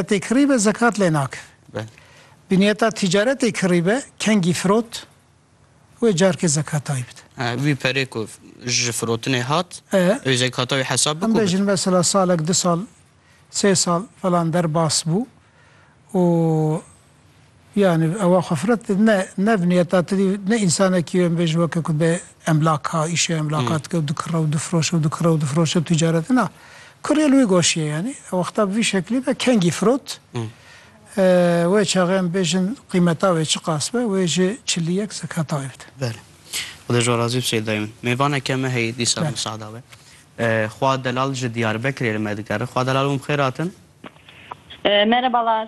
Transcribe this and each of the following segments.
Tê kirîbe zekat lê nakeve. Biniyeta tîcaretê kirîbe kengî firot wê carkê zekata wî bide. Wî perê ku ji firotinê hat wê zekata wî hesab bike. Em bêjin mesela salek du sal sê sal falan derbas bû û Yanî ewa xwe firet ne ne vinî heta ti dî ne însanekî em bêjin weke ku bi emlaka îşê emlaka dike û dikire û difiroşe û dikire û difiroşe tîcaret na. Kurê li wî goşî ye yanî ew wexta bi vî şeklî be kengî firot. Wê çaxê em bêjin qîmeta wê çi qas be wê ji çilî yek zek heta wê bide. Belê. Xuda ji we razî be Seyda min. Mêvaneke me heye dîsa li Musada be. Xwa Delal ji Diyarbekirê li me digere. Xwa Delal û min bi xêr hatin. Merebalar.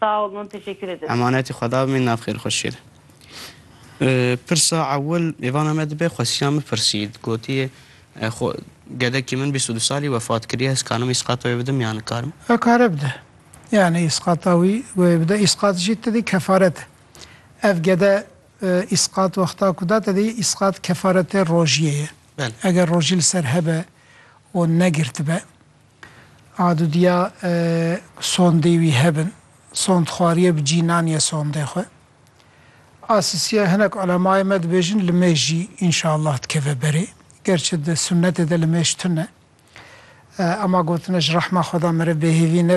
Sağ olun, teşekkür ederim. Emanetî Xweda bimî nav xêr xwe şêr. Pirsa ewil mêvana me dibe xwesiya min pirsî. Gotiye xwe gedekî min bîst û du salî wefat kiriye ez karim îsqata wê bidim ya nikarim? Kare bide. Yanî îsqata wî wê bide. Îsqat jî tedî kefaret e. Ev gede îsqat wexta ku da tedî îsqat kefaretê rojiyê ye. Eger rojî li ser hebe û negirtibe Adudiya sondê wî hebin. Sondxwariye bi cî naniye sondê xwe. A sisiya hinek ulemayê me dibêjin li mêj jî înşallah dikeve berê. Gerçi di sunnetê de li mêj tune. Ema gotine ji rehma xweda mere bêhêvî ne.